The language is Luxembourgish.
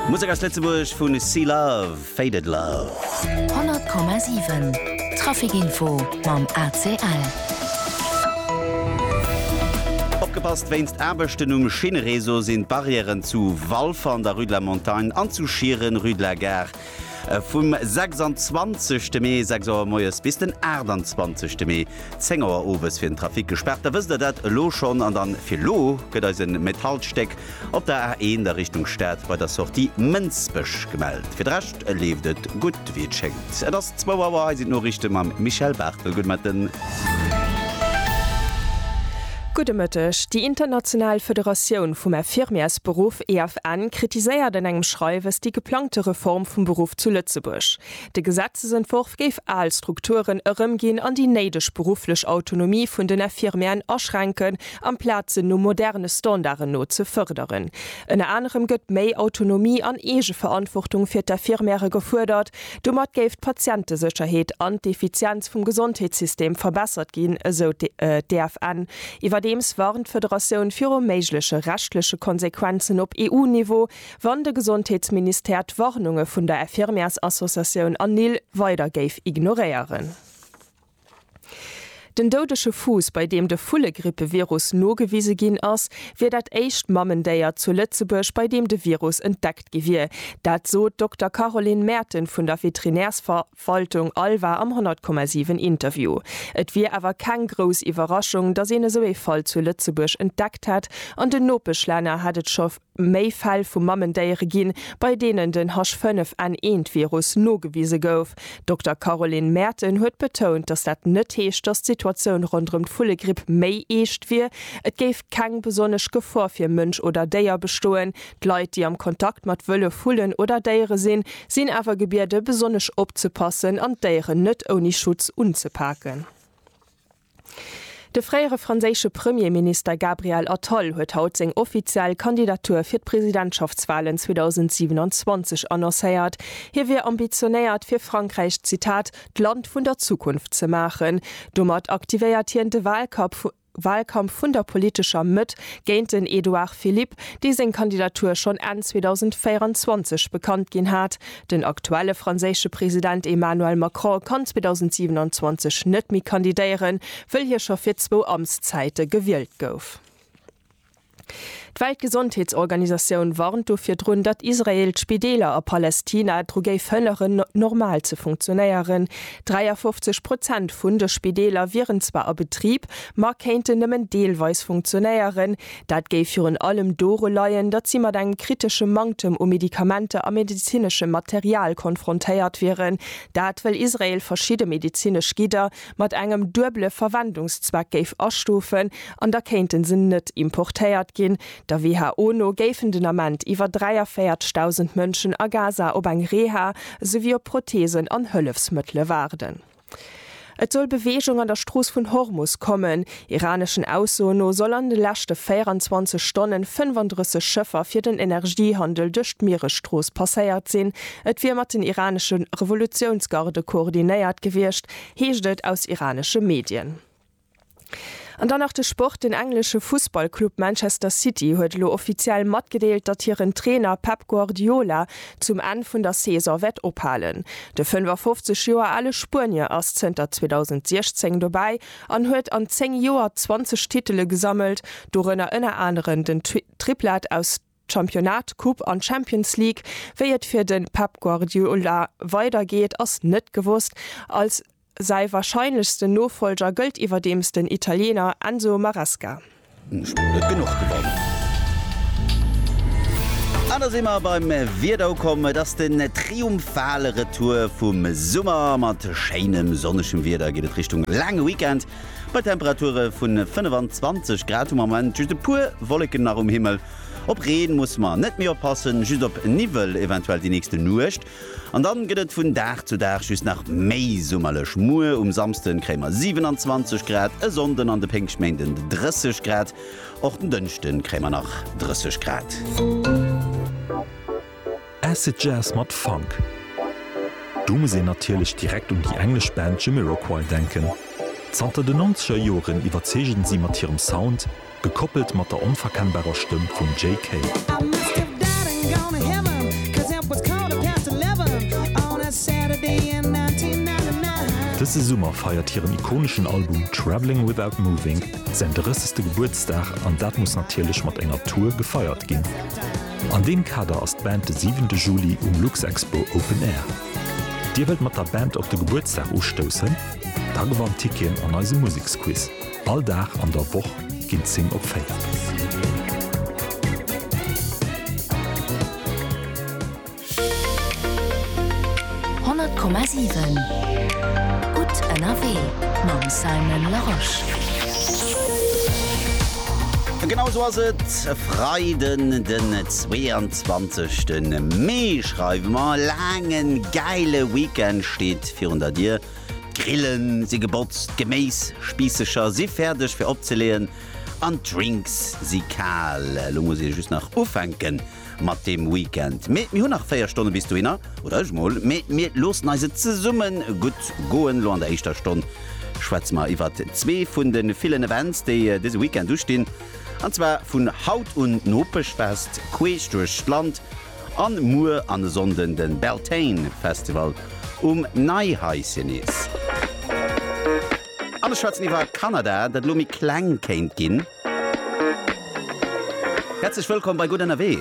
Musek aus Lëtzebuerg vu Sea Love, Faded Love. 100,7 Trafikinfo mam ACL. Opgepasst, Wéinst Aarbechten um Schinnereseau sinn d'Barrièren zu Walfer an der Rue de la Montagne an zu Schieren, Rue de la Gare, Vum 26 de Mee 6 Auer moies bis den 28 de Mee 10 Auer owes fir den Trafic gespaart. Da wësst der dat elo schonn. An dann fir elo gëtt eis en Met Haltstéck op der A1 a Richtung Stad bei der Sortie Mënsbech gemellt. Fir de Rescht leeft et gutt wéi et schéngt. Et ass 2 Auer, hei sinn d'Noriichte mam Michèle Barthel. Gudde Mëtten. Gudde Mëtteg. Déi international Federatioun vum Infirmièresberuff EFN kritiséiert an engem Schreiwes déi geplangte Reform vum Beruff zu Lëtzebuerg. De Gesetzesentworf géif al Strukturen erëmginn an déi néideg berufflech Autonomie vun den Infirmièren aschränken, amplaz se no moderne Standarden no ze fërderen. Ënner anerem gëtt méi Autonomie an Eegeverantwortung fir d'Infirmièrë gefuerdert, Domat géif d'Patientesécherheet an d'Effizienz vum Gesondheetssystem verbessert ginn, esou d'EFN. Iwwerdeems warnt d'Federatioun viru méigleche rechtleche Konsequenzen op EU-Niveau, wann de Gesondheetsministère d'Warnunge vun der Infirmièrsassociatioun Anil weider géif ignoréieren. Den doudege Fuuss, bei deem de Vullegrippevirus nogewise ginn ass, wier dat éischt Mamendéier zu Lëtzebuerg, bei deem de Virus entdeckt gi wier. Dat sot d'Dokter Caroline Merten vun der Veterinärsverwaltung Alva am 100,7 Interview. Et wier awer keng grouss Iwwerraschung, datt een esou ee Fall zu Lëtzebuerg entdeckt hätt, an den Nopeschlänner hätt et scho méi Fäll vu Mamendéiere ginn, bei deenen den H5N1-Virus nogewise gouf. Dokter Caroline Maerten huet betount, datt dat net heescht, datt d'Situatioun ronderëm d'Vullegripp méi eescht wier. Et géif keng besonnesch Gefor fir Mënsch oder Déier bestoen. D'Leit, déi am Kontakt mat Wëllef, Vullen oder Déiere sinn, sinn awer gebiede besonnesch opzepassen an d'Déieren net ouni Schutz unzepaken. De fréiere franséische Premierminister Gabriel Attal huet haut seng offiziell Kandidatur fir d'Presidentschaftswalen 2027 annoncéiert. Hie wier ambitionéiert, fir Frankräich, Zitat, d'Land vun der Zukunft ze maachen. Domat aktivéiert hien de Walkampf vun der politescher Mëtt géint den Edouard Philippe, dee seng Kandidatur schonn Enn 2024 bekannt ginn hat. Den aktuelle franséische President Emmanuel Macron kann 2027 net méi kandidéieren, wëll hie scho fir zwou Amtszäite gewielt gouf. D'Weltgesondheetsorganisatioun warnt du virdrun, datt Israel d'Spideeler a Palestina dru géif hënneren, normal ze funktionéieren. 53 Prozent vun de Spideeler wieren zwar a Betrib, ma kéinten nëmmen deelweis funktionéieren. Dat géif virun allem doru leien, datt si mat engem kritesche Manktem u Medikamenter a medezineschem Material konfrontéiert wieren. Dat well Israel verschidde medezinesch Gidder mat engem duebele Verwendungszweck géif astufen an da kéinte se net importéiert ginn. Der WHO no géifen den Ament iwwer 43.000 Mënschen a Gaza op eng Reha souwéi op Protheesen an Hëllefsmëttele waarden. Et soll Beweegung an der Strooss vun Hormus kommen. Iraneschen Aussoen no soll an de leschte 24 Stonne 35 Schëffer fir den Energiehandel duerch d'Mieresstrooss passéiert sinn. Et wier mat den iranesche Revolutiounsgarde koordinéiert gewiescht, heescht et aus iranesche Medien. An dann nach de Sport, Den englesche Fussballclub Manchester City huet elo offiziell matgedeelt, datt hiren Trainer Pep Guardiola zum Enn vun der Saison wäert ophalen. De 55 Joer ale Spuenier ass zënter 2016 dobäi an huet an 10 Joer 20 Titele gesammelt, dorënner ënner aneren den Triplat aus D'Championnat, d'Coupe an d'Champions League, wéi et fir de Pep Guardiola weider geet, ass net gewosst. Als säi warscheinlechsten Nofollger gëllt iwwerdeems den Italiener Enzo Maresca. An da si mer beim Wieder ukomm. Et ass den triumphale Retour vum Summer. Mat schéinem sonnegem Wieder geet et Richtung laange Weekend. Bei Temperature vu 25 Grad hu mer am Moment just e puer Wolleken nach um Himmel. Op Reen musse mer net méi oppassen, just op Niwwel eventuell déi nächste Nuecht. An dann gëtt et vun Dag zu Dag just nach méi summerlech. Muer um Samsden kréie mer 27 Grad, e Sonnden an de Péngschtméinden 30 Grad. Och den Dënschden kréie mer nach 30 Grad. Acid Jazz mat Funk. Do muss een natierlech direkt un déi englesch Band Jamiroquai denken. Zanter den nonzeger Joren iwwerzeegen si mat hirem Sound, gekoppelt mat der onverkennbarer Stëmm vum Jay Kay. Dëse Summer feiert hiren ikoneschen Album Travelling Without Moving säin 30. Gebuertsdag an dat muss natierlech mat enger Tour gefeiert ginn. An deem Kader ass d'Band de siwente Juli um Luxexpo Open Air. Dir wëllt mat der Band op de Gebuertsdag ustoussen? Da gewannt Ticketen an eisem Museksquiz. All Dag an der Woch ginn 10 op 4. Honnert Komma siwen, gutt ënnerwee mam Simon Larosche. Genau esou ass et, e Freiden den 22 de Mee schreiwe mer. E laangen, gäile Weekend steet virun der Dier. D'Grillen si gebotzt, d'Geméisspiissecher si fäerdeg fir opzeleeën an d'Drinks si kal. Elo muss ee just nach ufänken. mat deem Weekend. Mee mir hunn nach 4 Stonne bis dohinner, oder ech mol. Mee mir loossen eis et zesumme gutt goen. Lo an der éischter Stonn schwätze mer iwwert zwee vun de villen Events, déi dëse Weekend ustinn. An zwar vun haut un d'Nopechfest queesch duerch d'Land an muer an e Sonnden de Beltane Festival um Neihaissenees. An ech schwätzen iwwer Kanada, dat elo méi kleng kéint ginn. Häerzlech wëllkomm bei Gutt Ënnerwee!